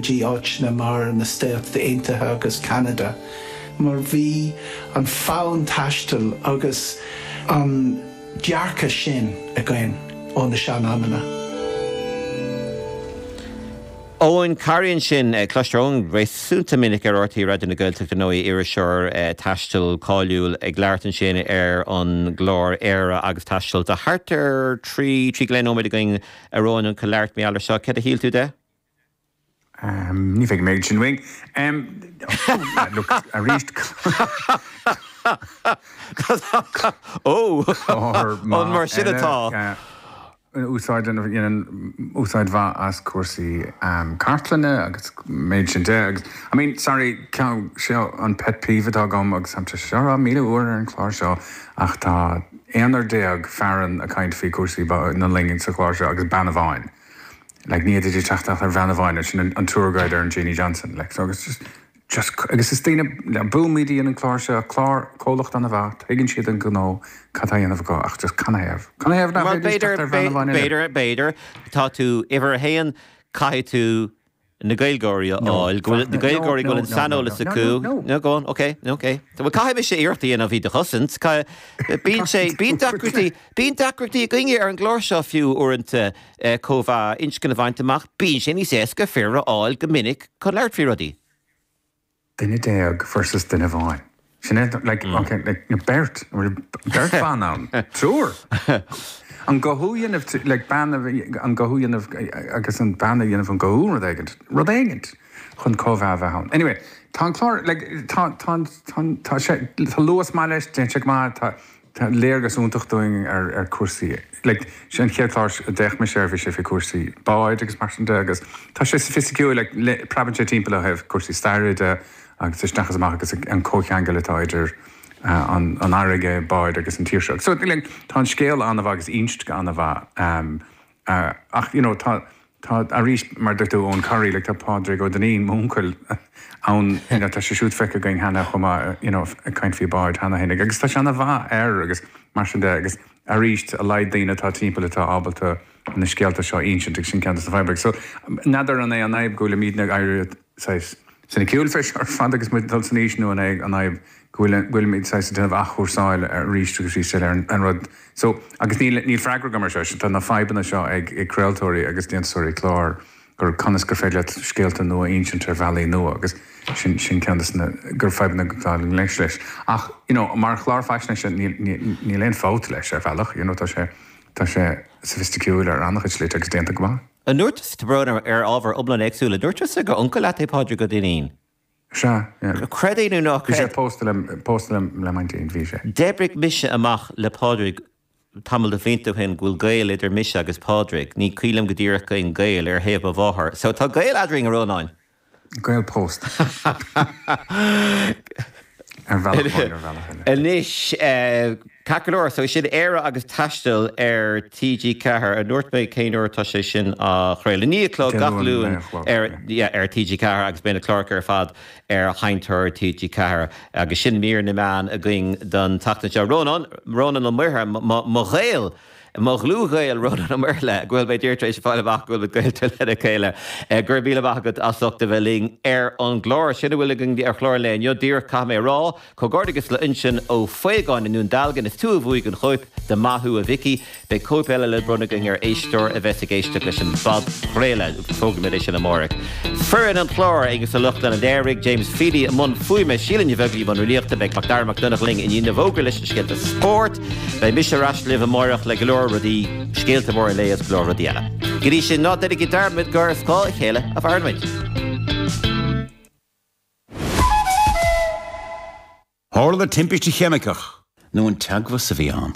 dtí áiteanna mar na Stáit Aontaithe agus Ceanada, mar bhí an fonn taistil agus an dearcadh sin againn ó na sean-amanna. Eoin Corry ansin. Cloistear Eoin réasúnta minic ar rte Raidió na Gaeltachta ar ndóigh, iriseoir taistil cáiliúil ag labhairt ansin ar an gclár Éire agus Taisteal. Tá thart ar thrí, trí go leith nóiméad againn, a Eoin, chun labhairt mar gheall air seo. Cad a shíl tú de? Ní bheidh mé ag sin uaidh. Look, arís. Ó! An mar sin atá? Úsáid mhaith as cúrsaí cartlainne agus mar sin de agus, I mean, sorry, seo an pet peeve atá agam agus táimse seo a rá míle uair ar an chlár seo ach tá aon fhear déag fear ann a' caint faoi chúrsaí na loinge sa chlár seo agus bean amháin. Like, ní fhéadfaidís teacht ach ar bhean amháin, ansin an, an tour guide ar an Jeanie Johnston, like, so agus just, just cr, agus is daoine, le, Bóthar iad a dhein an clár seo, clár, comhlacht an-mhaith, tuigeann siad an gnó, cad tá a dhéanamh acu ach just canathaobh, canathaobh nach Mar b'fhéadfaidís teacht b'fhéidir, ar bhean b'fhé, amháin eile? b'fhéidir, b'fhéidir, tá tú uimhir a haon, caithfidh tú, na Gaeilgeoirí a fháil, go bhfuil na Gaeilgeoirí, go bhfuil an saineolas acu. No, go on, okay, okay. Bhuel, caithfidh mise iarracht a dhéanamh iad a chosaint. Caithfidh. Bíonn sé, bíonn deacrachtaí, bíonn deacrachtaí againne ar an gclár seo fiú uaireanta cothromaíocht inscne a bhaint amach, bíonn sé níos éasca fir a fháil go minic chun labhairt faoi rudaí. Duine déag versus duine amháin. Sin é, like, ok, like, na beirt, an bhfuil beirt ban ann? Triúr! An gcothú dhéanamh trí, like, bean a bhí, an gcothú dhéanamh, agus an bean a dhéanamh an cothú, rud éigin, rud éigin chun comhbhá a bheith ann. Anyway, tá an clár, like, tá, tá, tá, tá sé, tá luas maith leis, tá sé go maith, tá, Tá léargas iontach dúinn ar chúrsaí. Like, sin an chéad chlár a d'fhéach mise air, bhí sé faoi chúrsaí báid agus mar sin de agus tá sé soifisticiúil, like, preabann sé timpeall ó thaobh cúrsaí staire de agus isteach is amach agus an comhcheangal atá idir an fharraige, báid agus an tír seo. So, like, tá an scéal an-mhaith agus ínste an-mhaith. Ach, you know, tá, tá, arís, mar a dúirt tú, Eoghan Corry, like, tá Pádraig Ó Duinnín, m'úncail, ann, you know, tá sé siúd feicthe againn cheana chomh maith, you know, ag caint faoi báid cheana féin. Agus tá sé an-mhaith air agus mar sin de agus, arís, a laghad daoine atá timpeall atá ábalta na scéalta seo a ínsint agus sin ceann dos na fadhbanna. So, n'fheadar an é an fhadhb go bhfuilimídne ag éirí, saghas soiniciúil faoi seo ar fad agus muid ag dul san aois, nó an é an fhadhb go bhfuil go bhfuilimid saghas ag déanamh athchúrsáil arís agus arís eile ar an rud so agus níl níl freagra agam ar seo, tá na fadhbanna seo ag ag craoltóirí agus déantúsóirí clár conas gur féidir leat scéalta nua a insint ar bhealaí nua agus sin sin ceann de na fadhbanna atá i ngleic leis ach you know mar chlár faisnéise níl níl níl aon fabht leis ar bhealach you know tá sé tá sé soifisticiúil ar an-chuid slite agus déanta go maith. An ndúirt tusa, tá brón orm, ábhar iomlán éagsúil, an ndúirt tusa gur uncail leat é Pádraig Ó Duinnín? Sea, yeah. Creid é nó ná creid. Bhí sé pósta le, pósta le, le m'aintín, bhí sé. D'oibrigh mise amach le Pádraig tamall de bhlianta ó shin go bhfuil gaol idir mise agus Pádraig, ní cuimhin liom go díreach cén gaol, ar thaobh mo mháthar. So, tá gaol eadrainn, a Rónáin. Gaol pósta. Ar bhealach amháin, ar bhealach eile. Anois, ceart go leor, so sin Éire agus Taisteal ar TG4. An ndúirt mé cén uair atá sé sin á chraoladh? Naoi a chlog gach Luan ar TG4 agus beidh na cláracha ar fad ar Sheinnteoir TG4. Agus sin mír na meán againn don tseachtain seo. Rónán, Rónán Ó Muirthe, mo ghaol! Mo dhlúthghaol, Rónán Ó Muirthile, go bhfuil mé díreach tar éis fáil amach go bhfuil muid gaolta lena chéile. Gura míle maith agat as ucht a bheith linn ar an gclár. Sin a bhfuil againn ar chlár an lae inniu, díreach, caithfidh mé a rá. Comhghairdeachas le Uinsionn Ó Faogáin i nDún Dealgan, is tú a bhuaigh an chóip de Maith thú a Mhicí. Beidh cóip eile le bronnadh againn ar éisteoir a bheas ag éisteacht leis an bpodchraoladh, agus tógfaimid é sin amárach. Foireann an chláir, Aengus Ó Lochtáin a léirigh, James Feely i mbun fuaime, Síle Ní Bheaglaí i mbun riaracháin, beidh MacDara Mac Donnacha linn i ndiaidh na bhfógraí leis na scéalta spóirt. Beidh mise ar ais libh amáireach le go leor rudaí, scéalta móra an lae agus go leor rudaí eile. Go dtí sin, ná déanaigí dearmad gur ar scáth a chéile a mhaireann muid. Tharla timpiste cheimiceach. nó an teagmhas a bhí ann.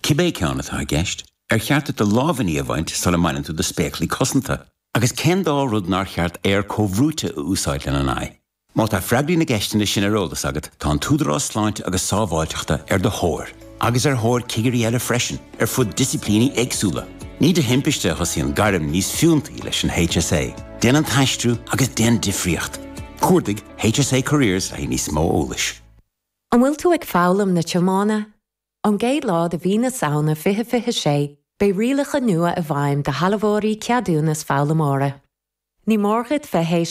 Cibé ceann atá i gceist, ar cheart duit do lámhainní a bhaint sula mbaineann tú do spéaclaí cosanta? Agus cén dá rud nár cheart aer comhbhrúite a úsáid lena n-aghaidh? Má tá freagraí na gceisteanna sin ar eolas agat, tá an tÚdarás Sláinte agus Sábháilteachta ar do thóir, agus ar thóir cigirí eile freisin, ar fud disciplíní éagsúla. Ní de thimpiste a thosaíonn gairm níos fiúntaí leis an HSA, Déan an tAistriú agus Déan Difríocht! Cuardaigh HSA Careers le haghaidh níos mó eolais. An bhfuil tú ag foghlaim na tiomána? Ón gcéad lá de mhí na Samhna 2026, beidh rialacha nua i bhfeidhm do shealbhóirí ceadúnas foghlaimeora. Ní mór dhuit bheith tar éis